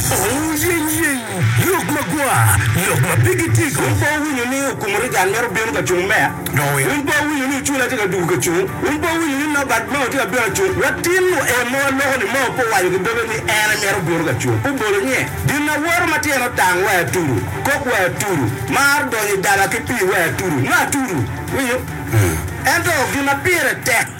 Ouyeyey! Lok magwar, lok ma pigi tic. Wun pe wuwinyo ni okumo Reagan mere obino ka cung meya? Wun pe wuwinyo ni Ocula tye ka dugo ka cung? Wun pe wuwinyo ni Norbert Mao tye ka bino ka cung? Latin-nu en mo aloko-ni Mao pe owaco ki doge ni en en mito bino ka cung. Pe obolo nye. Gin awoto ma tyene otang wai atudu, kok wai atudu, mar donyo i daba ki pii wai atudu, nyo atudu. Iwinyo? Ento gin ma pire tek.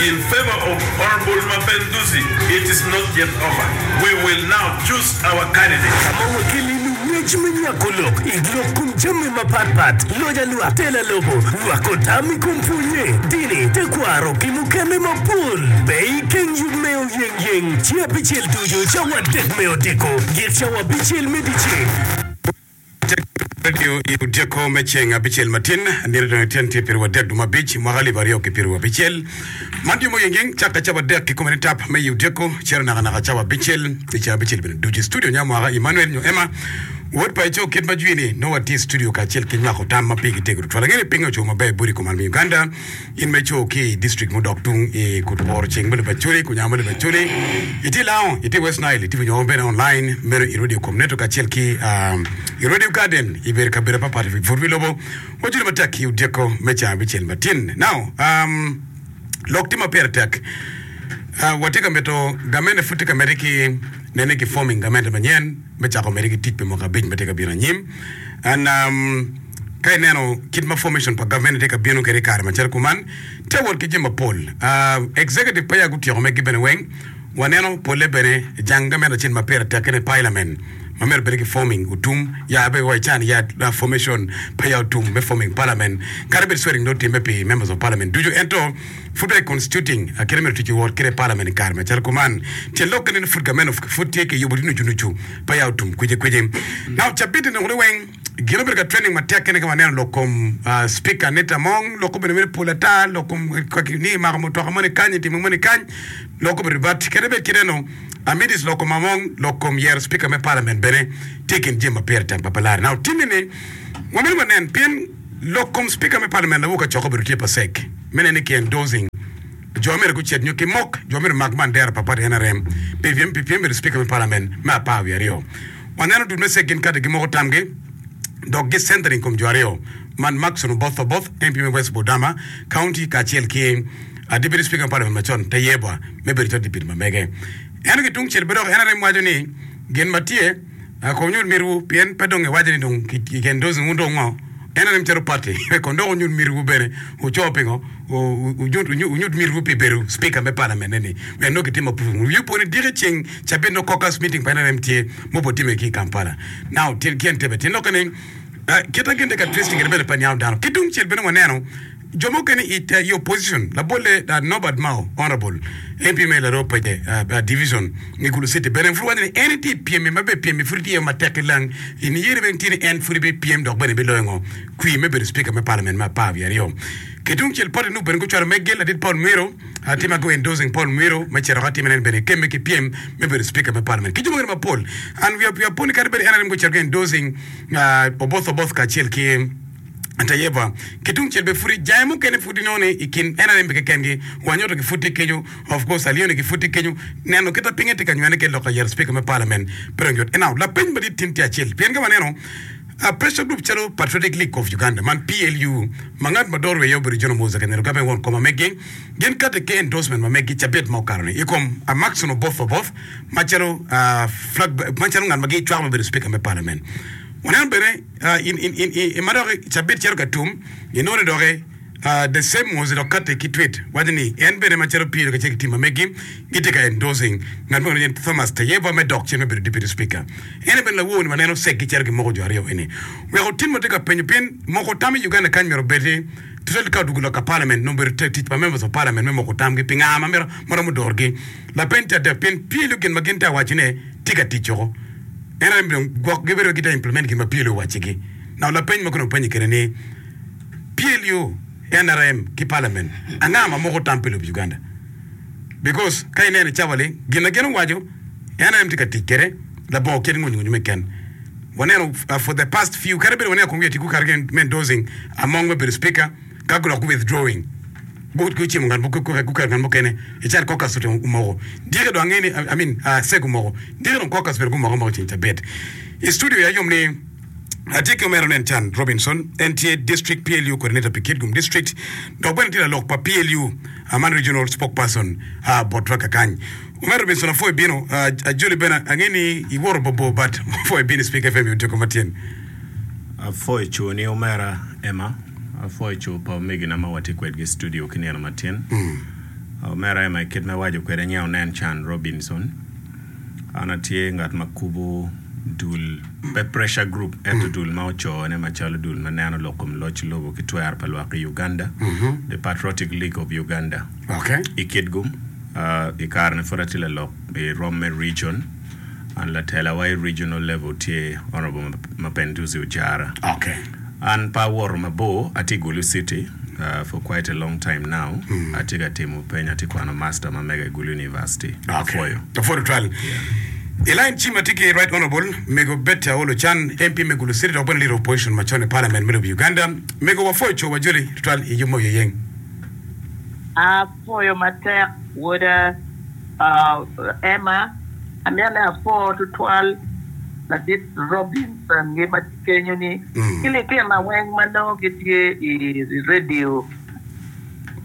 In favor of Honourable Mapenduzi it is not yet over we will now choose our candidate. Ka ma wakelle i lung ngec me nywako lok i lok kom jami mapat pat, loja lwak, tela lobo, nywako tam i kom pwonye, dini, tekwaro ki mukene mapol be i keng yub me oyeng yeng, ci abicel ducu cawa adek me odiko, git cawa abicel me dice. Tek pe nio i odyeko me ceng abicel matin, nino dong ityen tye piriwa adek duma abic, mwaka alip aryo ki piriwa abicel. Man yomo yengeng cak ka cawa adek kikome ni tap me i odyeko, ciro naka naka cawa abicel i caa abicel bene ducu. I studio nya mwaka Emmanuel nyo Emma, wod pa Eco kit ma jwini nongo watye i studio kacel ki nywako tam ma pigi tego tutwal. Ange ni pinge ocung maber bot i kom almi Uganda. In ma ico ki i district mudok tung i kut Bor ceng me lobo Acholi ku Nyango me lobo Acholi, itye Lango, itye West Nile, itibu nyo bene online, meno i Radio Kom Network kacel ki i Radio Garden i bedo kabedo mapat pat i pwod wi lobo, wacudu matek i odyeko me caa abicel matin. Now, um, lok tye ma pire tek. Uh, watye ka mito gamente pud tye ka mede ki nene ki forming gamente manyen me cako mede ki tic pi mwaka abic ma tye ka bino anyim. And um, Ka ineno kit ma formation pa gavment tye ka bino kwede i kare macalo kuman, tye wot ki jami mapol. Executive pe ya gutyeko megi bene weng, waneno pole bene jang gavment acel ma pire tek kene parliament ma myero bene ki forming otum ya abe wa ican ya formation pe ya otum me forming parliament kadi bed swearing dong otimme pi members of parliament ducu ento pud pe constituting kite myero otici wot kede parliament i kare macalo kuman tyen lok kene ni pud gavment pud tye ki yubo nucu nucu pe ya otum kweci kweci now cabiti ni kuni weng Gin obedo ka training matek kene ka waneno lok kom Speaker Anita Among, lok obedo mere pol ata, lok kom kaki ni mako mutoka moni kany, timo moni kany, lok obedo ribat. Kadi bed kite no, amidis lok kom Among, lok kom yero Speaker me Parliament bene tye i kin jami ma pire tek ma pe lare. Now timmi ni wamito wanen pien lok kom Speaker me Parliament lawur kacok obedo tye pa sek, me nen ni ki endorsing Jo mere gucit nyo ki mok. Jo mere mak bandera pa pati nrm pi pyem pi pyem bedo Cipika me Palament me apar wiye aryo. Waneno dul me cek gin kati gimoko tamgi dok gi centering kom jo aryo man Maxon Oboth Oboth, MP me West Budama County kacel ki a Deputy Cipika me Palament macon Tayebwa me bedo calo Deputy ma mege. Ento ki tungcel bene dok nrm waco ni gin ma tye. Ah, kono wunyut mitiwu, pien pe dong iwaco ni dong i gen dozen wun dong ngo? Ento nim calo pati, kono dok wunyut mitiwu bene. Wuco pingo? Wu, wunyut mitiwu pi bedo Spika me Palament-ni, pien nongo kitimo apuruvul. Wuyubbu ni diki ceng cabit nongo caucus meeting pa nrm tye, ma obwot timme ki i Kampala. Now, tyen, tyen Entebbe. Tyen lokke ni, Ah, kit ma gin tye ka twist kwede bene pe niango dano. Ki tungcel bene waneno, Jo mukene i opposition labolle Norbert Mao, Honourable MP me Laroo Paje Division me Gulu City bene pud waco ni en tye i pyem-mi ma bene pyem-mi pud tye matek ki lang i niyere bene tye ni en pud bipyem dok bene biloyo ngo kwir me bedo Speaker me Parliament me apar wiye aryo. Ki tungcel party nup bene gucwalo me gel ladit Paul Mwiro tye ma gu endorsing Paul Mwiro me cito ki atima ne en bene kemme ki pyem me bedo Speaker me Parliament ki jo mukene mapol and we are puni kadi bed en aye bene gucito gu endorsing Oboth Oboth kacel ki Ento Yehova ki tungcel bene pud ijayo. Mukene pud inongo ni i kin en arem-mi keken-gi, wanyoto-gi pud tye kenyo, of course aliyoni-gi pud tye kenyo. Neno kit ma pinye tye ka nywene ki lok ka yero Cipika me Palamen pe dong yot. Enao, lapeny madit tin tye acel, pien ka waneno pressure group calo Patriotic League of Uganda man, PLU, ma ngat ma doro iye obedo John Omoza Kanyero Gape won kom ma meggi, gin kati ki endorsement ma meggi cabit ma okato-ni i kom Amackson Oboth Oboth macalo flag bearer, macalo ngat ma gicwako me bedo Cipika me Palamen. Waneno bene. I ma dok cabit cito ka tum, inongo ni dok The Same was dok kati ki twit waco ni en bene macalo Peter kacel ki tim ma megi gitye ka endorsing ngat mo ma nyinge Thomas Tayebwa me dok cen me bedo Deputy Speaker. En aye bene lawo ni waneno ceggi cito gimoko jo aryo eni. Wek otim ma tye ka penyo pien moko tam i Uganda kany myero obed ni tutwal ka odwogo lok ka Parliament nongo bedo tic pa Members of Parliament me moko tamgi pinga ma romo dorgi. lapeny te adek pien Pielo gin ma gin te awaci ne tye ka tic woko. En aye dong gwok gi bedo gite implement gin ma Pielo owaci gi. Now lapeny ma konong penyi kede ni Pielio nrm ki parliament anga ma moko tam pi lobo Uganda? Because ka ineno i cawa ling gin ma gin owaco nrm tye ka tic kede labongo kit nguny nguny me ken waneno for the past few kadi bed waneno kong wiye tye gukato ki me endorsing among me bedo speaker ka guloko ki withdrawing, gu gucimo ngat mo gu guketo ngat mukene i cal caucus to omoko dyeke dong ange ni I mean Aseg omoko dyeke dong caucus bene gumoke amoka ceng cabit i studio ya yom ni atye ki omera nen can Robinson en tye district PLU coordinator pi Kitgum district dok bene tye lalok pa PLU a man regional spokesperson a bot Twagge kany omera Robinson apwoyo ibino a ajoli bene ange ni iwoto bor bor but apwoyo ibino i Speak FM i Odiko ma tyen. Apwoyo coni omera Emma. Apwoyo co pa omegina ma watye kwedgi i studio ki nino matin. Omera Emma i kit ma iwaco kwede nyen onen can Robinson. An atye ngat ma kubo dul pe pressure group ento dul ma ocone macalo dul ma neno lok kom loc lobo ki twero pa lwak i Uganda, The Patriotic League of Uganda. I kit gum, i kare-ni pud atye lalok i romme region. An latela wa i regional level tye Honourable Mapenduzi Ojara. Okay. An pe awoto mabor, atye i Gulu city for quite a long time now. Atye ka timo peny, atye kwano master ma mega i Gulu University. Apwoyo. Okay. Apwodo tutwal. Yeah. I line cim atye ki Right Honourable mego Betty Aol Ochan, MP me Gulu city dok bene Leader of Opposition macon i Parliament me lobo Uganda. Mego wapwoyo cowa joli tutwal i yub ma oyeyeng. Apwoyo matek woda Emma, anene apo tutwal ladit Robinson gi ma tye kenyo ni ki litina weng ma nongo gitye i radio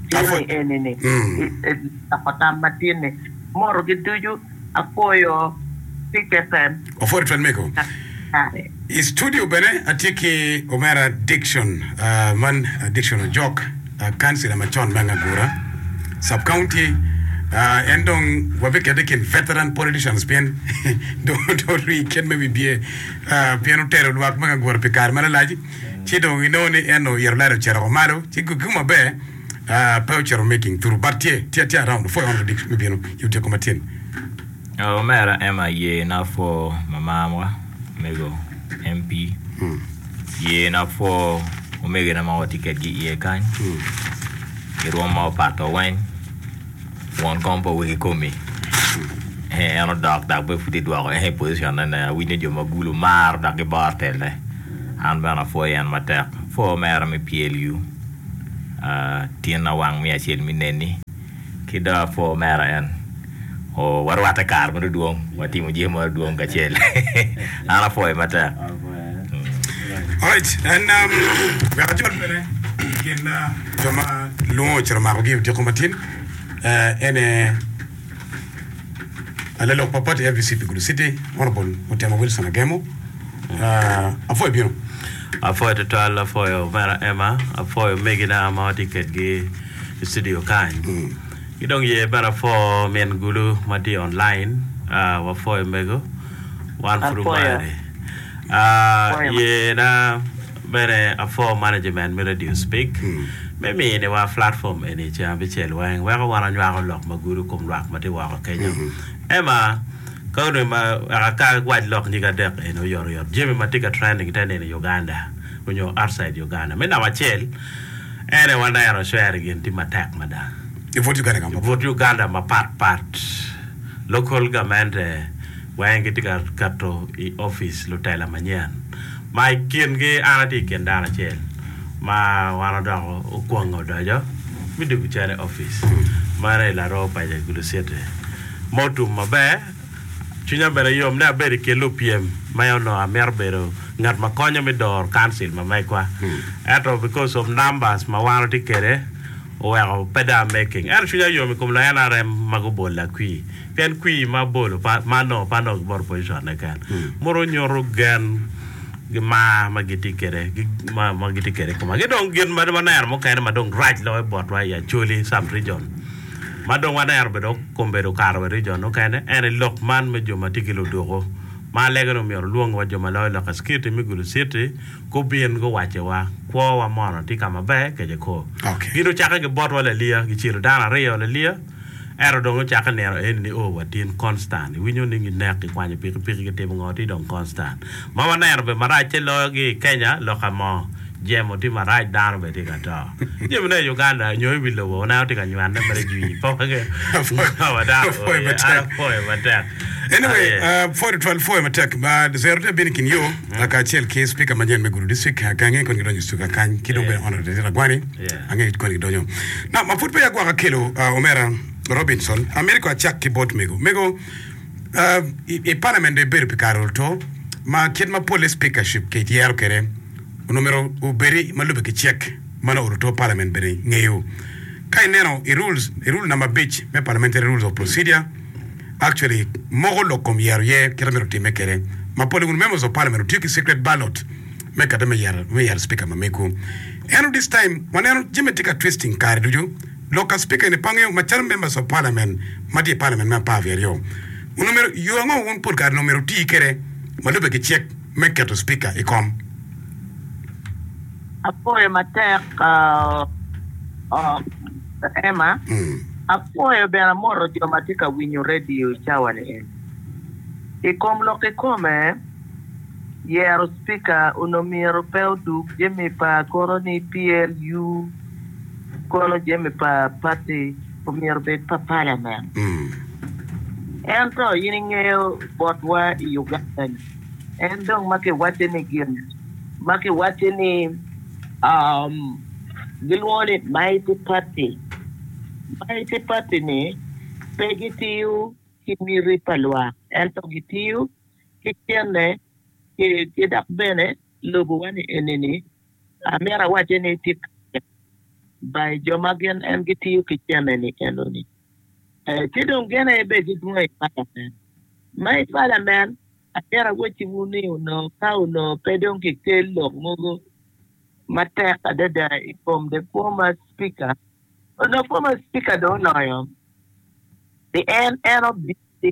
cene eni ni i loko tam matin ni motogi ducu. Apwoyo ticce Pen. Opwodo Pen mego. Kare. I studio bene atye ki omera Dickson, man Dickson Ojok, kancila macon me Angagura Sub County. En dong wabikete i kin veteran politicians pien dong orii i kit me bibye pien otelo lwak me Angagura pi kare ma lalac ci dong inongo ni en oyito lado ocito woko malo ci gikki maber. Ah, pe ocito meeting turu, but tye, tye, tye around opwoyo one prediction me bino i otyeko ma tyeni. Oh, omera Emma ye napwo mamam wa omego MP ye napwo omegina ma watye kedgi iye kany i rwom ma opato weng won kom pa wegi komi eh en odok dok bene pud idwoko en i position ne ne awinyo ni jo ma gulu maro dok giboro telle an bene apwoyo en matek pwo omera me PLU tyen awang me acel me nen-ni, ki dong apor mera en. Oo, warwatte kare ma dong dwong, watimo jami ma dong dwong kacel. An apwoyi matek. Alright, en um, wek ajol bene i kin uh, jo ma lwongo ocito makogi odiko matin, eh, ene Lalok mapol i FBC pi Gulu City, Honourable Mutema Wilson Agemo. Ah, apwoyo ibino. Apwoyo tutwal, apwoyo omera Emma, apwoyo omegina ma watye kedgi i studio kany. Ki dong ye bene apwo min Gulu ma tye online, ah, wapwoyo omego. Wan pud Apwoyo. omari. Ah, Apwoyo. yena. Bene Afore Management me Radio Speak me miniwa platform eni ceng abicel weng weko wan wanywako lok ma gudo kom lwak ma tye woko kenyo. Emma, Ka onongo ma weka ka wac lok nyig adek eni oyotoyot, jami ma tye ka trending te nino i Uganda onyo outside Uganda. Me namba acel, en aye waneno share gin tye matek mada. I but Uganda kama I but pat. Uganda mapat pat, local gamente weng gitye ka keto i office lutela manyen. Ma i kingi an atye i kin dano acel ma wan odoko okwonge odoco me dwogo cal i opic mere i laroo paco i Gulu City ma otum maber. Cwinya bene yom ni abedo i kin lupyem ma onongo amito bedo ngat ma konyo me doro Council ma megwa. Ento because of numbers ma wan watye kwede oweko pe dong a making. Ento cwinya yom i kom la NRM ma gubolla kwii. Pien kwir ma bolo ma nongo pe adok ki bot opojicon-ne keken modo nyuto gen ki mar ma gitye kwede ma gitye kwede i koma. Ki dong gin ma waneno mukene ma dong rac loyo botwa i Acholi Sub Region ma dong waneno bene okombedo okato wa i region mukene en aye lok man me jo ma tye ki luduku ma alege-ni omyero olwong wa jo ma loyo lok i Citi me Gulu Citi gubin guwacci wa kwowa mono tye ka maber kece koo. Gin gucakke ki botwa laliya gicelo dano aryo laliya. Ento dong ocakke nino eni ni, Oh, wa tin Konstan, iwinyo ni ginek, gikwanyo pikipiki, gitimo ngo? Ti dong Konstan. Ma waneno be marac te loyo gi i Kenya, lok amo? Jemo ti marac, dano be ti ka to. Jemo ne i Uganda nyo i wi lobo waneno ti ka nywane mere jwii pa wage ngo wa dano oh Apwoyo yeah, an matek. apwoyo matek. Anyway, Aye. ah, pwod otwal pwoyo matek. Ma zero te bino i kin yo kacel ki Spika manyen me Gulu District, Akangi kun gidonyo Stuka kany ki dong bene Honourable Titi Ragwani. Yeah. Angeyo kit koni gidonyo. Nam ma pud peya agwaka kelo omera Robinson amito ko acak ki bot mego. Mego uh i parliament be ibedo pi kare oto ma kit ma polle speakership ki yero kede onongo myero obedi ma lube ki cek mano oto to parliament bene ngeyo ka ineno i rules i rule namba abic me parliamentary rules of procedure actually moko lok kom yero ye kit ma myero time kede ma polle wun members of parliament otiyo ki secret ballot me kade me yero me yero speaker ma megu eno this time waneno jami tye ka twisting kare ducu lok ka speaker eni pangeo macalo members of parliament matye i parliament me apar wi aryo onongo myero yo ango wun pol kare onongo myero wuti kede ma lube ki cik me keto speaker i kom. Apwoyo matek Emma, apwoyo bene amoto jo ma tye ka winyo radio i cawa ni eni. I kom lok kikome, Yero Speaker onongo myero pe odug jami pa kono ni PLU kono jami pa party omyero obed pa Parliament. Ento in ingeyo botwa i Uganda ni en dong ma kiwacce ni gin ma kiwacce ni gilwongo ni mighty party, mighty party ni pe gitiyo ki miti pa lwak ento gitiyo ki kenne ki dok bene lubuwa ni enini, amito awace ni tye kare tek ba i jo ma gin en gitiyo ki kenne ni enoni. Ci dong gin aye bed gidwong i palamen. Ma i palamen, amito awacciwu ni onongo ka onongo pe dong kikel lok mogo matek adada i kom the former speaker, onongo former speaker dong oloyo, pi en en obitye.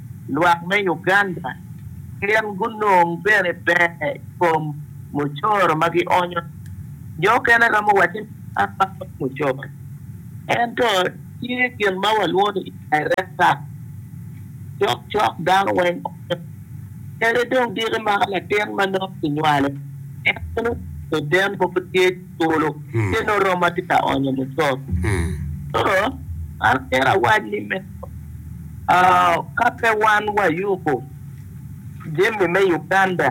lwak me Uganda gin gunong bene ber i kom mucoro ma gionyo. Jo okene romo wacce ni, An aonyo mucoro. Ento tye gin ma walwongo ni indirect tax. Cokcok dano weng onyo kede dong diki maka latin ma nongo kinywalo en bene oten mogo tye. polo tye nongo romo ma tye ka onyo mucoro. Koro an myero awac ni me ka pe wan wayubo jami me Uganda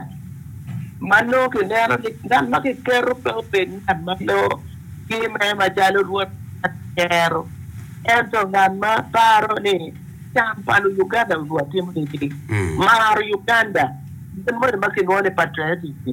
ma nongo kineno ni ngat ma kiketo pe obed ngat ma nongo timme macalo rwot kero ento ngat ma paro ni can pa Luyuganda onyo watimo nini, maro Uganda, gin moni ma kilwongo ni patriotic-ki.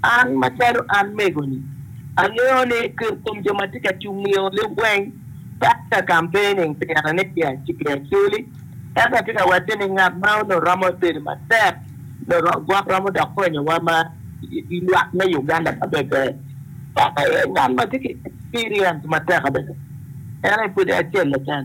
An macalo an mego-ni, angeyo ni kit kom jo ma tye ka cungnio lib weng pat ka kampening pira ni pi acel acel. Ento atye ka watte ni ngat ma onongo romo bedo matek nongo gwok romo dok konyowa ma lwak me Uganda ma bebe en aye ngat ma tye ki experience matek adada. En aye pwod acel keken.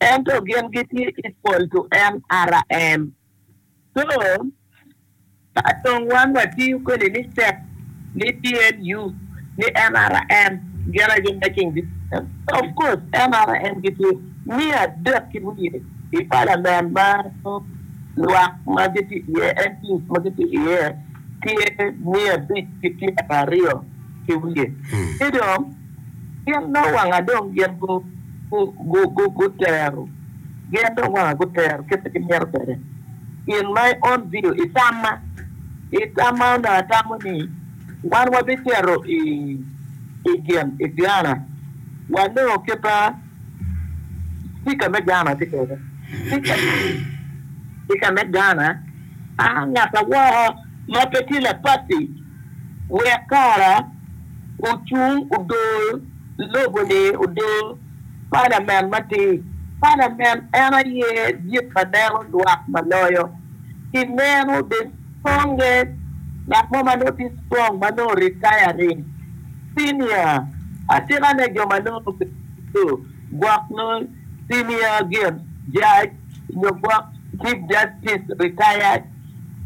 Ento gin gitye equal to NRM. So, ka dong wan watiyo kwede ni step, ni PLU, ni NRM, gin aye making decision. Of course NRM gitye miya adek ki wiye i Parliament ma lwak ma gitye iye, MPs ma gitye iye tye miya abic ki pyeraryo ki wiye. Ci dong. Gin dong wanga dong gin gutero gin dong wanga gutero kit ma gimito kwede gin ma on video i tamma i tamma onongo atamo ni wan wabicito i i gin i Gana wanongo kit ma speaker me Gana tye kwede speaker me Gana a ngata woko ma pe tye laparty Wek kara ocung odor lobo-ni odor palament matir, palament en aye dit ma neno lwak ma loyo. Ki meno the strongest, ngat mo ma nongo tye strong ma nongo retiring senior atika ne jo ma nongo obedo gwok nongo senior gin judge nyo gwok chief justice retired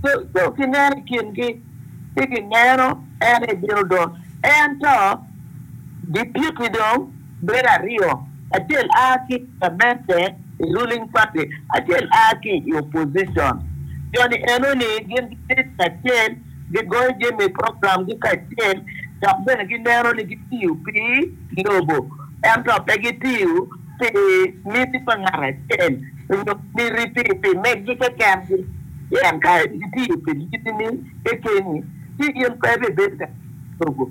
so ki neno i kingi. ci gineno en ebino dong. Ento gipiti dong bedo aryo, acel a ki i pulamente, i ruling party, acel a ki i opposition. Jo-ni enoni gin gibedo kacel, gigoyo jami programgi kacel, dok bene gineno ni gitiyo pi lobo ento pe gitiyo pi miti pa ngat acel onyo miti pi meggi keken gi pien ka itiyo pi miti ni kekeni ci in pe ibibedo ka lobo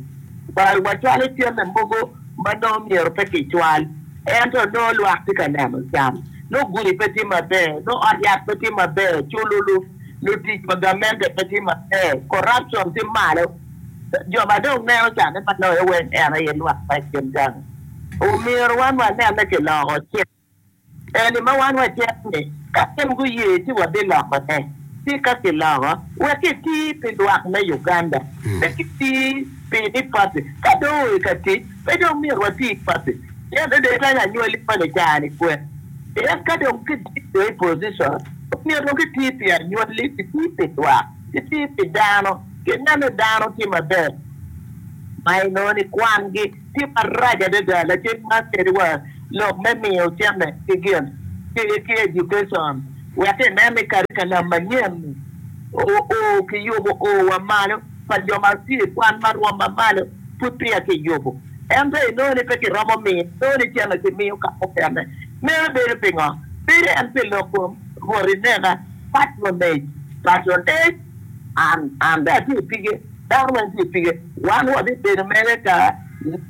bal wa cwalo cente mogo ma nongo myero pe ki cwal ento nongo lwak tye ka neno can nongo gudi pe tye maber nongo ot yat pe tye maber culo lutic pa gamente pe tye maber corruption tye malo jo ma dong neno cane ma loyo weng en aye lwak ma i kin gang. Omyero wan wanene ki loko cik eni ma wan wacito ni ka gin guye ci wabilokone. Ci ka kiloko, wek eti pi lwak me Uganda, pe kiti pi ni papi ka dong oo i ka tic, pe dong myero wati ki papi. Pien dong kany anywali moni i caa-ni kwek. Pien ka dong kidit dong i position, omyero dong kiti pi anywali, kiti pi lwak, kiti pi dano, kineno dano tye maber ma i nongo ni kwangi. Tye marac adada lacen man kadi wa lok me miyo cente ki gin ki education wek ki nen ni karikalam manyen ni o ki yubo o wa malo pa jo ma tye i kwan ma rwom ma malo pud peya ki yubo ento inongo ni pe ki romo miyo inongo ni cente ki miyo ka mukene meno bedo pingo bedo en pi lok kom rwot inena patronage patronage and and atye pige. Dano weng tye pige. Wan wabibedo mere ka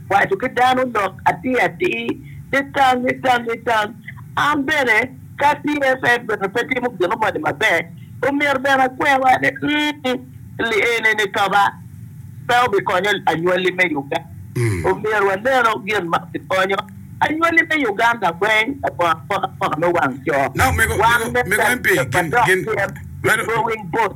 waco ki dano lok atir atir, nitang, nitang, nitang. An bene ka TFF bene pe timo gino moni maber, omyero bene akwewa ni, mm, li enini toba pe obikonyo anywali me Uganda. Omyero wanenu gin ma bikonyo anywali me Uganda weng labongo apokapoka me wang co. Wan me Uganda madok tyen, going both.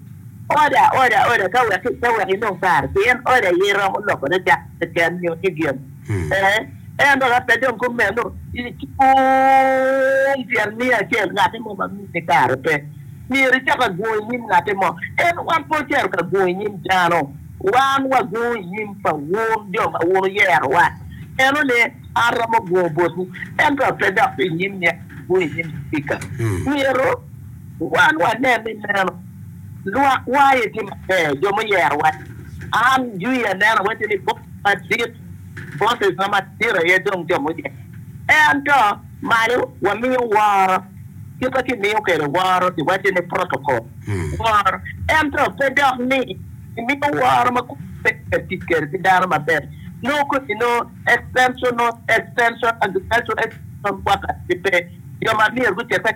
Oda, oda, oda ka wek, ka wek inong kare, pien oda aye romo lokone cak keken nyo tye gen. Ee, ento ka pe dong kumeno, i cung tyen miyo acel ngatte mo ma miti kare pe, myero icak agungo i nyim ngatte mo. Ento wan pe ocito ka gungo i nyim dano, wan wagungo i nyim pa wun jo ma wun wuyerowa. Meno ni, an romo gungo botwu, ento pe dok i nyim myero agung i nyim Cipika. Myero. Wan wanen ni meno lwakwa aye tye maber, jo muyero wa. An jwi aneno wacce ni bot madit, bosses ma madit aye dong jo muyero. Ento malo wamiyo woro, kit ma kimiyo kwede woro kiwacce ni protocol, woro. Ento pe dok ni imiyo woro ma kodi pe itye ka tic kwede ki dano maber. Nongo kodi nongo extension, extension, agricultural extension workers gipe, jo ma myero gucete.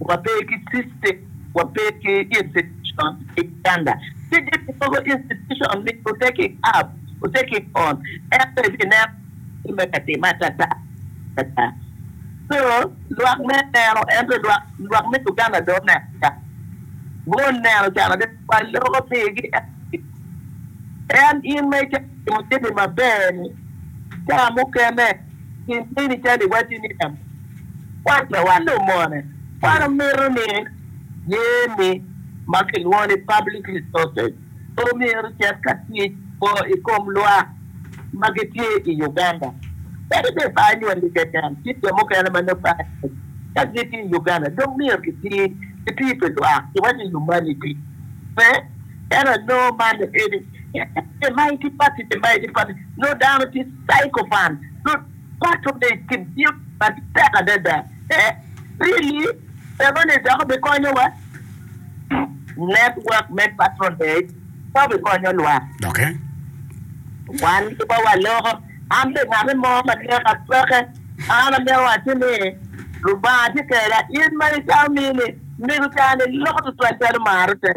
Wape ki system, wape ki institution i Uganda. Ci gin mogo institution ni ote ki gov, ote ki kon, ento ibineno tye me ka timme atata atata. So lwak me neno ento lwak lwak me Uganda dong oneno can, guneno can adada. Waloko pigi en in ma icako timo jami maber-ni, ca mukene gin mini calo iwacci ni lam Wan pe walumone. Wan omito ni jami ma kilwongo ni public resources omyero ocit ka tic bor i kom lwak ma gitye i Uganda. Kadi bed pe anywalli keken ci jo mukene ma nongo pe anywali ka gitye i Uganda dong myero gitir gitir pi lwak ci waco humanity. Pe? Ento nongo man eni, ite ma iti pati, ite ma iti pati, nongo dano tye sycophant. Paco ni kibiyo matek adada e really eno ni dok obikonyo wa network me patronage pe obikonyo lwak Doke. wan ki ba waloko an be ngati mo ma neka peke an amito wacci ni lubanga tye keda in ma icamo mini mego cani loko tutwal calo maro tek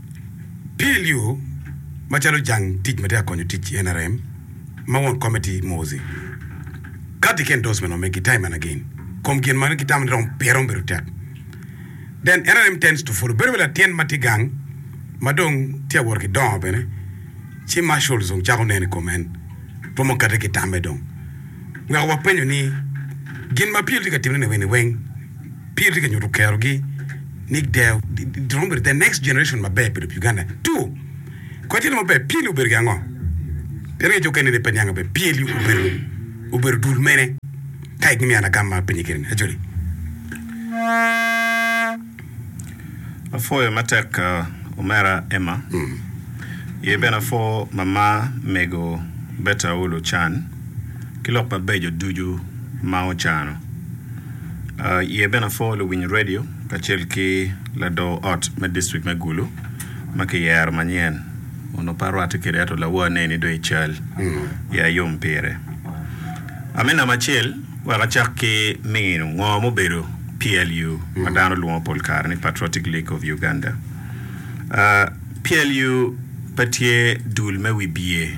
Pil yo macalo jang tic ma tye ka konyo tic i nrm ma won komitti Mozi kati ki endorsement wa me gi time and again kom gin ma gitamo ni romo pire romo bedo tek then nrm tends to follow bedo calo latin ma tye gang ma dong tye ka wot ki dongo bene ci marshals dong cako neno i kom en romo kati ki tamme dong weko wapenyo ni gin ma pil tye ka timone ni eni weng Pire tye ka nyuto kerogi ni giromo bedo the next generation maber bedo pi Uganda. Two, kodi tye lok maber, PLU obedo gin ango? Pien ngeco okene ni pe niange maber, PLU obedo obedo dul mene? Ka igin miya lagam ma apenyi kene ni, Acholi. Apwoyo matek omera Emma, ye bene apwo mama mego Berta Aulu Ochan ki lok mabeco ducu ma ocano. Iye bene apwo luwiny redio kacel ki lador ot me distrik me Gulu ma kiyero manyen, onongo pe arwatte kwede ento lawa aneni dong i cal, ya ayom pire. Ame namba acel, wek acak ki nino ngo ma obedo PLU ma dano lwongo pol kare ni Patriotic League of Uganda. PLU pe tye dul me wibye.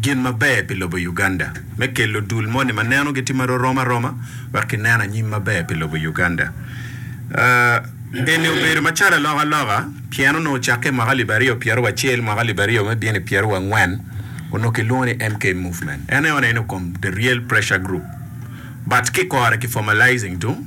gin maber pi lobo Uganda me kelo dul moni ma neno gitye ma rorom aroma wek ki neno anyim maber pi lobo Uganda. Eni obedo ma calo aloka aloka pien onongo ocakke i mwaka alip aryo pyero wa cel mwaka alip aryo me bino i pyero wa ngwen onongo ki lwongo ni MK Movement. En aye one ino kom the real pressure group but ki kore ki formalizing tung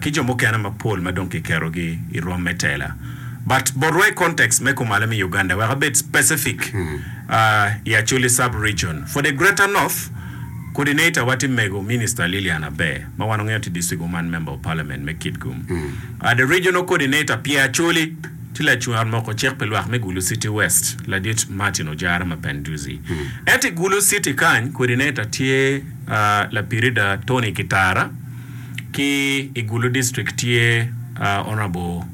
ki jo mukene mapol ma dong kiketo gi i rwom me tela. But botwa i context me kumalo me Uganda wek abed specific i Acholi Sub Region for the Greater North, Coordinator wa tye mego Minister Lilian Aber ma wan wangeyo tye District Woman Member of Parliament me Kitgum. The Regional Coordinator pye Acholi tye lacung ot moko cik pi lwak me Gulu City West ladit Martin Ojara ma Panduzi. Ento i Gulu City kany Coordinator tye. Lapirida Tony Kitara ki i Gulu District tye Honourable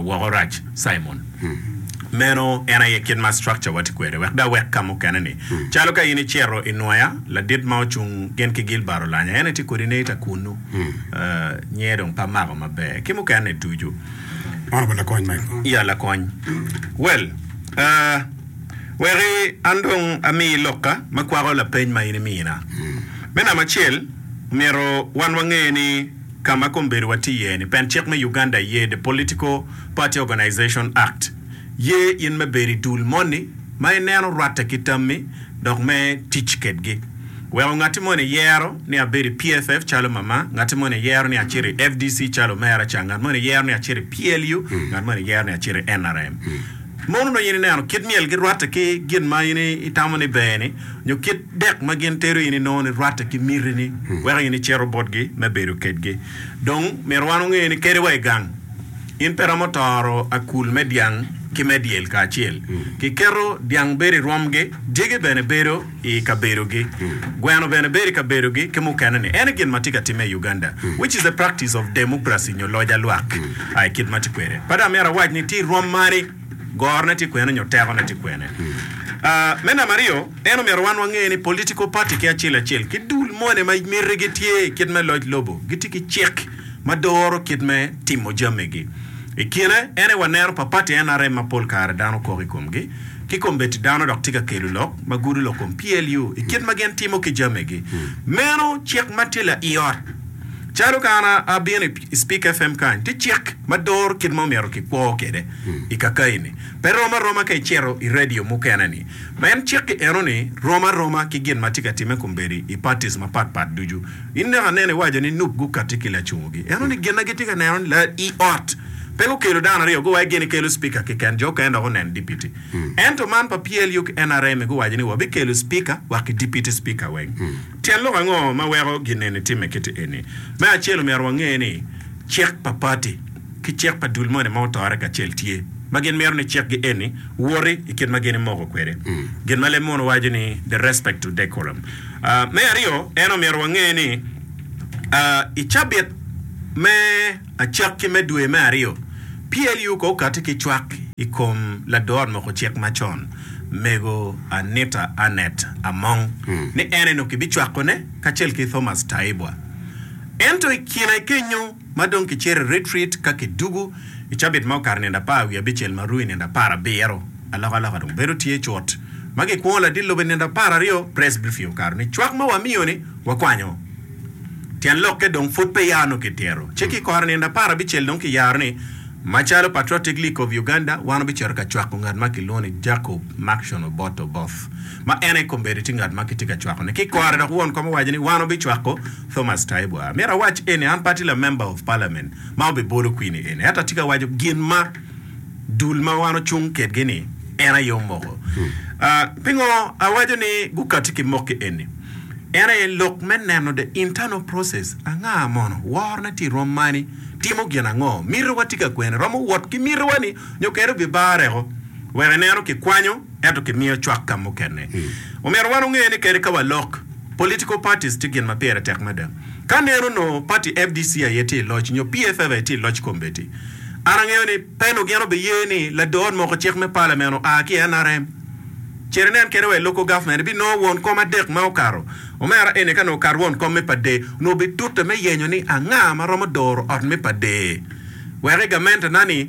Wokorac Simon. Meno en aye kit ma structure wa tye kwede wek dok wek ka mukene ni calo ka in icito i Nwoya ladit ma ocung gin ki Gilbert Olanya en aye tye coordinator kunnu nyer dong pe amako maber ki mukene ni ducu. Honourable Lakony Michael. Ya Lakony. Well. Weki an dong amiyi lokka ma kwako lapeny ma in imina. Me namba acel, omyero wan wange ni ka ma kombedo watye iye ni, pen cik me Uganda ye The Political Party Organization Act ye in me bedo i dul moni ma ineno rwatte ki tammi dok me tic kedgi. Weko ngatti moni yero ni abedo i PFF calo mama, ngatti moni yero ni acito i FDC calo omera ca, ngat moni yero ni acito i PLU, ngat moni yero ni acito i NRM. Mono onongo in ineno kit myelgi rwatte ki gin ma in itamo ni ber-ni, nyo kit dek ma gin tero in inongo ni rwatte ki mitini weko in icito botgi me bedo kedgi? Dong myero wan onge ni kadi wa i gang, in pe iromo toro akul me dyang ki me dyel kacel. Kiketo dyang bedo i rwomgi, dyegi bene bedo. i kabedogi. Gweno bene bedo i kabedogi ki mukene ni en gin ma tye ka timme i Uganda which is a practice of democracy nyo loc alwak a i kit ma tye kwede. Pe dong amyero awac ni tye rwom mani, gorone tye kwene nyo tekone tye kwene. A Me namba aryo, en omyero wan wange ni political party ki acel acel ki dul mone ma mitigi tye i kit me loc lobo gitye ki cik ma doro kit me timo jamigi. I kine ene waneno pa party NRM ma pol kare dano kok i komgi. ki kombeddi dano dok tye ka kelo lok ma gudo lok kom PLU i kit ma gin timo ki jamigi. Meno cik ma tye laiot. Calo ka an abino i Speak FM kany, tye cik ma doro kit ma omyero kikwo kwede i kakayi-ni. Pe rom aroma ka icito i redio mukene-ni. Pien cik-ki eno ni rom aroma ki gin ma tye ka timme kombeddi i parties mapat pat ducu. In dok aneno iwaco ni nup gukatti ki lacungogi. Ento ni gin na gitye ka neno ni la i ot pe gukelo dano aryo go wa gini kelo speaker kiken jo okene dok onen dipiti. Ento man pa PLU ki NRM guwaco ni wa bi kelo speaker wa ki dipiti speaker weng. Tyen lok ango ma weko gin eni timme kiti eni? Me acel omyero wa nge ni cik pa party ki cik pa dul moni ma otore kacel tye ma gin mito ni cik gi eni woti i kit ma gin imoko kwede gin ma leb mono waco ni the respect to decorum. Me aryo, en omyero wange ni i cabit me acek ki me dwe me aryo, PLU ko okati ki cwak i kom lador moko cik macon, Mego Anita Annet Among, ni en eno kibicwakone kacel ki Thomas Taibwa. Ento i kine kenyo, ma dong kicito i retreat ka kidugu i cabit ma okato nino apar wiye abicel ma ru i nino apar abiro, alokaloka dong bedo tye cut. Ma gikwongo ladit lobo i nino apar aryo, Presbfy okato ni, Cwak ma wamiyo ni, wakwanyo. Tyen lokke dong pud pe ya nongo kitero. Ci kikoro i nino apar abicel dong kiyaro ni, Macalo Patriotic League of Uganda, wan wabicito ka cwako ngat ma kilwongo ni Jacob Maction Oboth Oboth. ma en aye kombeddi tye ngat ma kitye ka cwakone ki i kore dok won kom owaco ni wan wabicwako Thomas Taibuar. Myero awac eni, an pe atye la Member of Parliament ma obibolo kwini eni ento atye ka waco gin ma dul ma wan ocung kedgi ni en aye omoko. Pingo awaco ni gukati ki mokki eni? En aye lok me neno the internal process, anga mono, worone tye i rwom mani, timo gin ango, mitiwa tye ka kwene, romo wot ki mitiwa ni nyo kene obibareko wek ineno kikwanyo. ento kimiyo cwak ka mukene. Omyero wan onge ni kadi ka walok, political parties tye gin ma pire tek mada. Ka nen onongo party FDC aye tye i loc nyo PFF aye tye i loc i kombeddi, an angeyo ni peno gin obiye ni lado ot moko cik me parliament oa ki i NRM. Cer inen kede wa i local government ibinongo won kom adek ma okato. Omera eni ka nongo okato won kom me pade, onongo bitute me yenyo ni anga ma romo doro ot me pade wek i gamente na ni,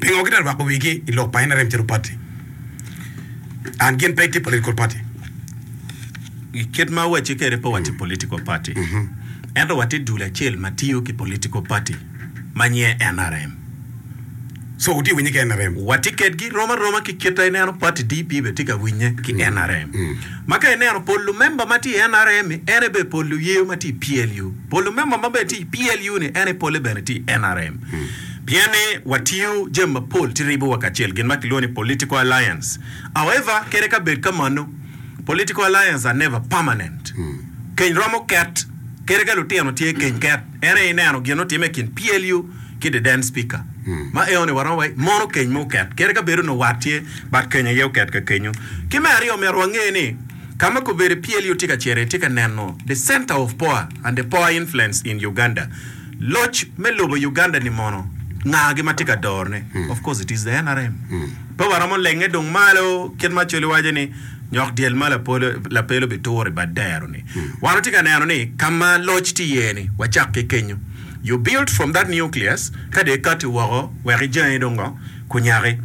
Pingo gitye ka rwako wigi i lok pa nrm calo pati and gin pe gitye political party? I kit ma owacci kwede pe watye political party, ento watye dul acel ma tiyo ki political party ma nyinge nrm. So wutye ka winye ki nrm? Watye kwedgi rom aroma ki kit ma ineno pati DP bene tye ka winye ki nrm. Ma ka ineno pol lumemba ma tye i nrm-mi, en aye bene pol luye ma tye i PLU. Pol lumemba ma bene tye i PLU-ni en aye pole bene tye i nrm. Pien ni watiyo jami mapol ci ribowa kacel, gin ma kilwongo ni political alliance. However, kede ka bed ka mano, political alliance are never permanent. Keny romo ket, kede ka lutino tye keny ket. En aye ineno gin otime i kin PLU ki the then speaker. Ma eoni waromo wa mono keny mo ket, kede ka bed onongo wat tye, but keny aye oket ka kenyo. Ki me aryo, omyero wange ni ka ma kobedi PLU tye ka cito iye, tye ka neno the center of power and the power influence in Uganda. Loc me lobo Uganda ni mono nga gi matye ka doro ne? Of course it is the nrm. Pe waromo lenge dung malo kit ma Acholi waco ni nyok dyel ma lapel obi turo i bad dero ni. Wan watye ka neno ni ka ma loc tye iye ni wacak ki kenyo. You built from that nucleus ka dong ikati woko wek ijangi dong ngo kunyaki.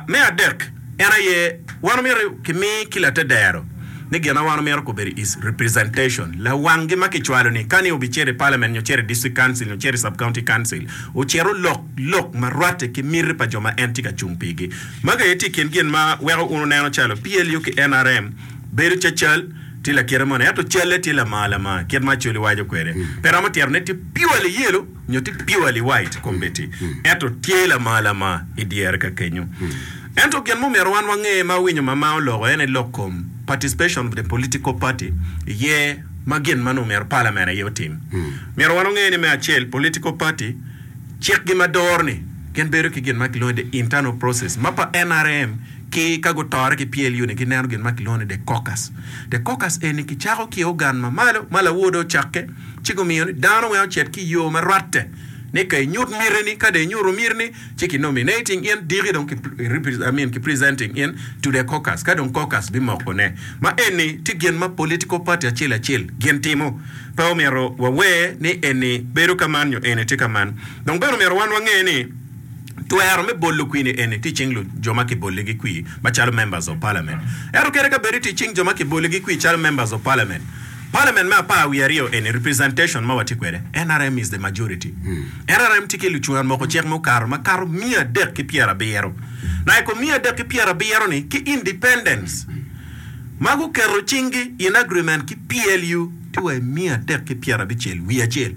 Me adek. En aye, wan omito ki mi ki latedero ni gin ma wan omito kubedi is representation, lawang gi ma ki cwalo ni ka ni obi cito i parliament nyo cito i district council nyo cito i sub county council ocit olok lok ma rwate ki miti pa jo ma en tye ka cung pi gi. Magi aye tye i kin gin ma weko un wuneno calo PLU ki nrm bedo cacal tye lakite moni ento calle tye lamar lamar kit ma Acholi waco kwede. Pe romo tyero ne tye purely yelo. nyo tye pure liwait committee ento tye lama lama i dyere ka kenyo. Ento gin mumyero wan wange ma awinyo mama oloko en aye lok kom participation of the political party iye ma gin ma nongo myero parliament aye otim. Myero wan onge ni me acel political party cik gi ma doro ni gin bedo ki gin ma kilwongo ni the internal process ma pa nrm ki ka gutore ki PLU ni gineno gin ma kilwongo ni the caucus. The caucus eni kicako ki ogan ma malo ma lawode ocakke. ci gumiyo ni dano weng ocit ki yoo ma rwatte ni ka inyut miti ni ka dong inyutu miti ni ci ki nominating in diki dong ki I mean ki presenting in to the caucus ka dong caucus bi moko ne ma eni ti gin ma political party acel acel gin timo pe omito wa wer ni eni bedo ka man nyo eni ti ka man dong bene omito wan wa nge ni Twero me bolo kwini eni tye i cing jo ma kiboligi kwi macalo Members of Parliament. Ento kadi ka bedi tye i cing jo ma kiboligi kwi calo Members of Parliament, Parliament me apar wiye aryo eni, representation ma watye kwede, nrm is the majority. Nrm tye ki lucwon moko cik mukato ma kato miya adek ki pyera abiro. Na i kom miya adek ki pyera abiro ni ki independents ma guketo cinggi in agreement ki PLU tye wa i miya adek ki pyera abicel wiye acel.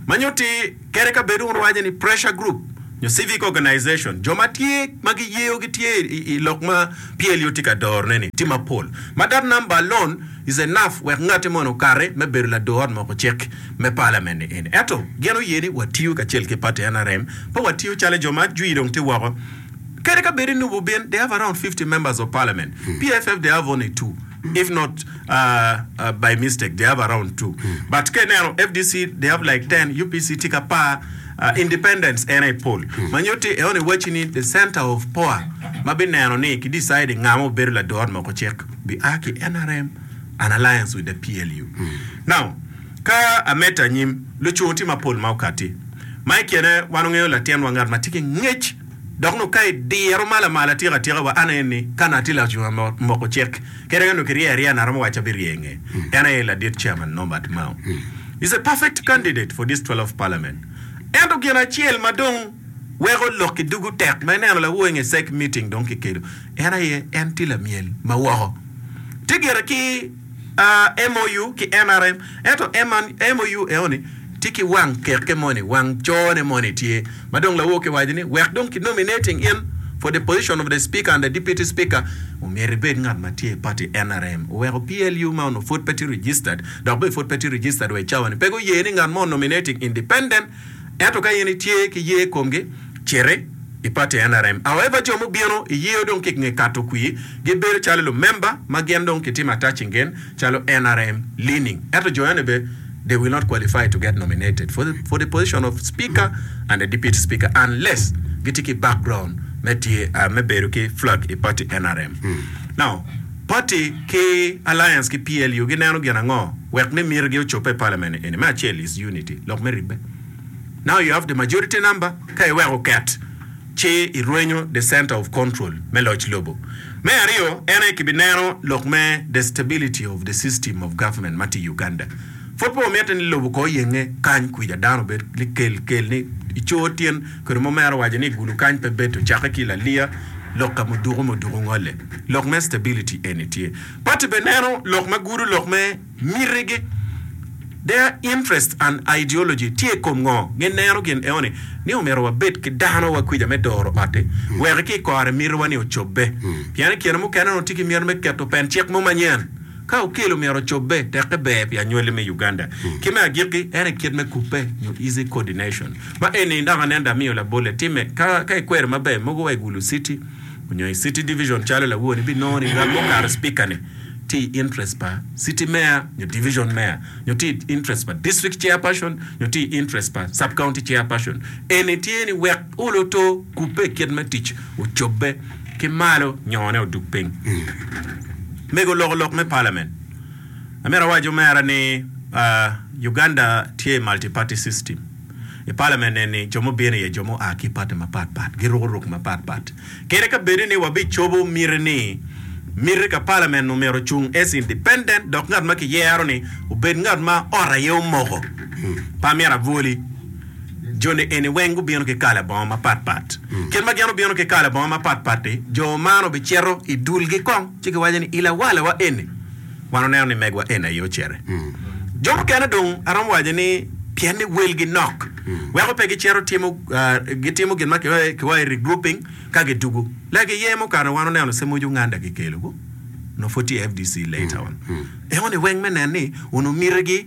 Ma nyutti. Kadi ka bed wun wuwaco ni pressure group nyo civic organization, jo ma tye ma giyeyo gitye i lok ma PLU tye ka dorone-ni tye mapol ma that number alone is enough wek ngati moni okati me bedo lador ot moko cik me Parliament-ni eni. Ento gin oye ni watiyo kacel ki party nrm pe watiyo calo jo ma jwi dong tye woko. Kadi ka bed i Nup obin they have around fifty members of Parliament, PFF they have only two. if not by mistake they have around two but ka ineno fdc they have like ten UPC tye ki apar independents en aye pol ma nyutti en onongo iwacci ni the center of power ma bineno ni ki deciding nga ma obedo lador ot moko cik bi a ki nrm and alliance with the PLU now ka amedde anyim lucur tye mapol ma okatti ma ikine wan ongeyo latinwa ngat ma tye ki ngec Dok nongo ka idiro ma lamal atika atika wa, an aye ni, ka nat tye lacunga ma moko cik, kadi ka nongo kirye arya nat romo waco abirye nge, en aye ladit Chairman Norbert Mao is a perfect candidate for this twelve parliament. Ento gin acel ma dong weko lok ki dugu tek ma ineno lawo nge sec meeting dong kikedo, en aye en tye lamyel ma woko. Tye gire ki. MOU ki NRM ento MOU eoni tye ki wang keke moni, wang cone moni tye ma dong lawo ki waco ni wek dong ki nominating in for the position of the speaker and the deputy speaker omyero ibed ngat ma tye i party NRM oweko PLU ma onongo pwod pe tye registered dok bene pwod pe tye registered wa i cawa ni pe guye ni ngat mo nominating independent Ento ka in itye ki ye i komgi, citi i pati NRM. However, jo mubino i yeo dong ki nge kato kwir gibedo calo lumemba ma gin dong kitimo attaching gen calo NRM leaning. Ento jo ene be they will not qualify to get nominated for the for the position of speaker and the deputy speaker unless gitye ki background me tye me bedo ki flag i pati NRM. Now, Pati ki Alliance ki PLU gineno gin ango wek ni mitigi ocobbe i Parliament eni? Me acel is unity, lok me ribbe. Now you have the majority number, ka iweko oket ci irwenyo the centre of control me loc lobo. Me aryo en aye kibineno lok me the stability of the system of government ma tye i Uganda. Pud pe wamite ni lobo ko oyenge kany kwica dano obed kel kel ni icor tyen. Kodi mo mero waco ni gulu kany pe bedo cakke ki laliya lok ka muduku muduku ngole. Lok me stability eni tye. Party bene neno lok ma gudu lok me miti gi. Their interest and ideology tye i kom ngo. Gin neno gin eoni ni omyero wabed ki dano wa kwica me doro oti wek ki kore miti wa ni ocobbe. Pien ikine mukene onongo tye ki miti me keto pen cik mo manyen. Ka Okello omyero ocobbe, tekke ber pi anywali me Uganda. Ki me agikki, en aye kit me kubbe nyo easy coordination. Ma eni dok aneno da miyo labolle timme. Ka, ka ikwero maber, mogo wa i Gulu City onyo i City Division calo lawoni, ibinongo ni ngat mukato Spikane tye i interest pa City Mayor nyo Division Mayor, nyo tye i interest pa District Chairperson, nyo tye i interest pa Sub-County Chairperson. Eni tye ni wek Uluto kubbe i kit me tic, wocobbe ki malo nyone odug piny. Mego loko lok me Parliament. Amito awac omera ni Uganda tye i multi party system. I Parliament eni jo mubino iye jo mua ki party mapat pat, giruko ruk mapat pat. Kadi ka bedo ni wabicobo miti ni miti ka Parliament nu myero ocung as independent dok ngat ma kiyero ni obed ngat ma ot aye omoko, pe amyero abwoli. Joni eni weng gubino ki kala bongo mapat pat. Kit ma gin obino ki kala bongo mapat pat-ti, jo man obicito i dulgi kong ci giwaco ni, I lawalawa eni, wan oneno ni megwa eni aye ocere. Jo mukene dong aromo waco ni pien ni welgi nok weko pe gicito timo gitimo gin ma kiwaco ni regrouping ka gidugu lagi iye mukato wan oneno se moc Uganda kikelo nongo pud tye FDC later on. Enoni weng me nen ni onongo mitigi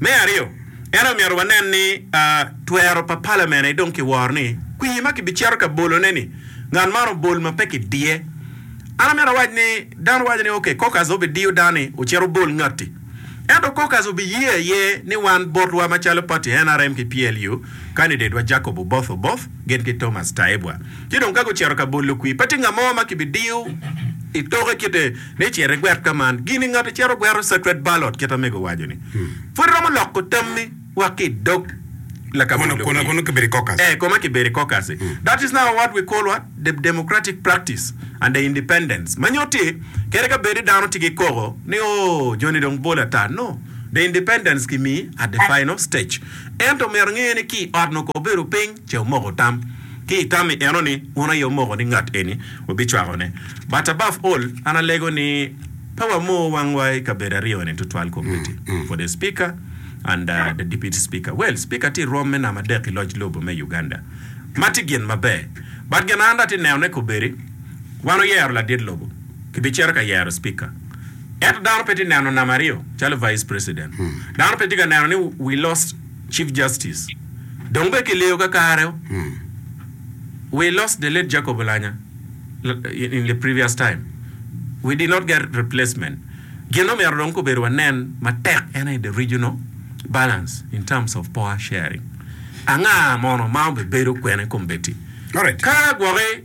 Me aryo, en omyero wanen ni twero pa Palament-ni dong kiworo ni kwir ma kibicito ka bolone-ni, ngat man obol ma pe kidiye. An amito awac ni, dano waco ni, Ok, caucus obidiyo dano-ni ocit obol ngatti. Ento caucus obiye aye ni wan botwa macalo pati nrm ki PLU, kandidetwa Jacob Oboth Oboth gin ki Thomas Taibwa. Ci dong ka gucito ka bolo kwir, pe tye ngat mo ma kibidiyo i toke kite. ni cit igwet ka man. Gini ngati cito gwero secret ballot kit amego owaco-ni, pud iromo loko tammi wa ki i dog lakabedo Kono, kono, kono kibedo i caucus. Eh, koma kibedo i caucus-si. That is now what we call what? The democratic practice and the independence. Ma nyutti, kadi ka bedi dano tye ki koko ni, Oh, joni dong bol ata. No. The independence kimi at the final stage. Ento omyero enge ni ki i ot nongo ka obedo piny ce omoko tam. Ki i tam i enoni, wun aye wumoko ni ngat eni wubicwakone. But above all, an alego ni pe wamor wangwa i kabedo aryoni tutwal komiti for the speaker and the deputy speaker. Well, speaker tye i rwom me namba adek i loc lobo me Uganda. Ma tye gin maber. But gin an dong atye nenone kobedi, wan oyero ladit lobo, kibicito ka yero speaker. Ento dano pe tye neno namba aryo calo vice president. Dano pe tye ka neno ni we lost. Chief Justice. Dong bene kiliyo kakare-o. We lost the late Jacob Olanya in the previous time. We did not get replacement. Gin ma omyero dong kobedo wanen matek en aye the regional balance in terms of power sharing. Anga mono ma obibedo kwena i kombeddi? Ka gwoki.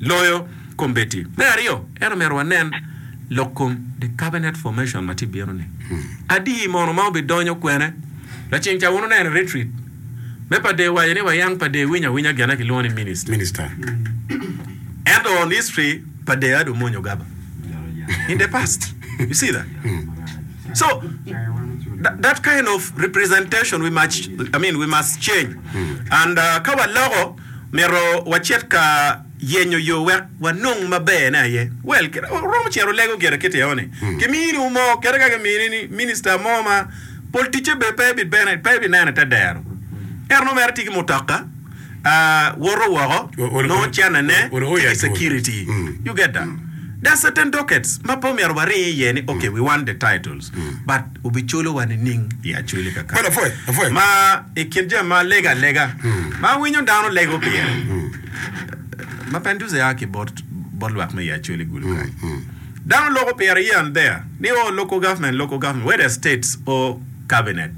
loyo kombeddi. Me aryo, en omyero wanen lok kom The Cabinet Formation ma tye bino-ni. Adi mono ma obidonyo kwene? Lacen ca wunoneno i retreat me pa dee owaco ni wayang pa dee winyo awinya gene kilwongo ni Minister. Minister. Ento on history pa dee ado mwonyo gaba in the past. You see that? So, that, that kind of representation we must, I mean, we must change and ka waloko. Myero wacit ka yenyo yo wek wanong maberne aye. Well, kit ma wuromo cito lego gire kit eo ni, kiminiwu mo, kadi ka kimini ni minista mo ma pol ticce be pe bibene, pe binene te dero. Ento nongo mere tye ki mutoka, woto woko, nongo cennene tye ki security. You get that? There are certain dockets ma pe omyero waring iye ni, okay, we want the titles, but. wubiculowa nining? Ma i kin jami ma alega alega ma awinyo dano lego pire, ma Panduze a ki bot lwak me Yaculi gulu kany, dano loko pire here and there ni o local government, local government, where does states or cabinet?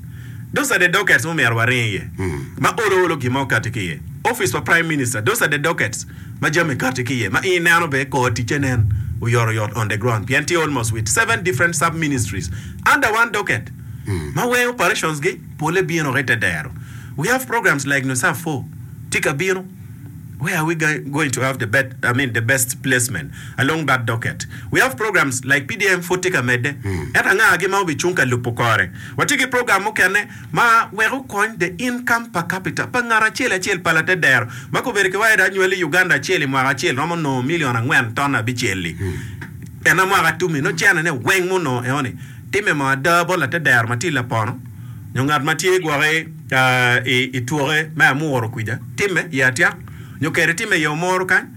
Those are the dockets ma omyero waring iye ma olo olo gin mo kati ki iye. Office pa Prime Minister, those are the dockets. ma jami kati ki iye ma i neno be kor ticce nen oyoto yot on the ground pien tye almost with seven different sub ministries under one docket ma weng operations gi pole bino ki te dero we have programs like NUSAF four tye ka bino where are we going to have the bet I mean the best placement along that docket we have programs like PDM pud tye ka medde ento anga gi ma obi cung ka lubo kore watye ki program mukene ma wek okony the income per capita pa ngat acel acel pa latedero ma kobedo ki waida anywali i Uganda acel i mwaka acel romo nongo milion angwen ton abicel-li. Ena mwaka tum-mi nongo cene-ne weng ma onongo eoni timme mo ada bot latedero ma tye lapono nyo ngat ma tye gwoki i twoke me amuro kwija timme iye atyak nyo kede timme iye omoro kany.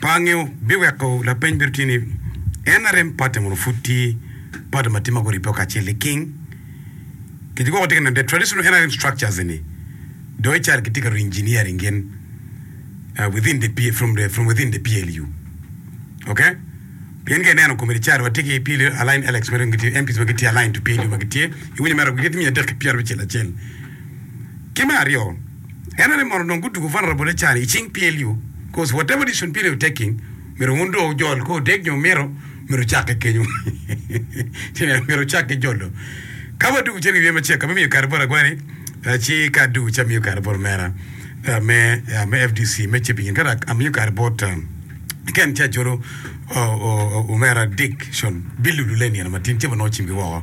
pa ngeo biweko lapeny bedo tye ni, En arem pate mono pud tye pate ma tye ma guribbe o kacel i king? Kit gwoko tye ka neno the traditional NRM structures eni do ical kitye ka re-engineering gin uh, within the P- from the from within the PLU. Okay? Pien ka ineno komiti ca watye ki PLU aligned Alex ma dong gitye MPs ma gitye aligned to PLU ma gitye iwinyo mere gitye miya adek ki pyerabicel acel. Ki me aryo, En aye mono onongo gutugo vulnerable cani i cing PLU coz whatever decision PLU taking myero wun do wujol ka odeg nyo mito myero wucakke kenyo myero wucakke jolo ka wa dugu cen i wiye macek ka bimiyo kare bot agwani ci ka adugu ci amiyo kare bot omera me me FDC me Chebigin ka dok amiyo kare bot Ken ci acolo omera Dickson bilulu le nino matin cebo nongo cimgi woko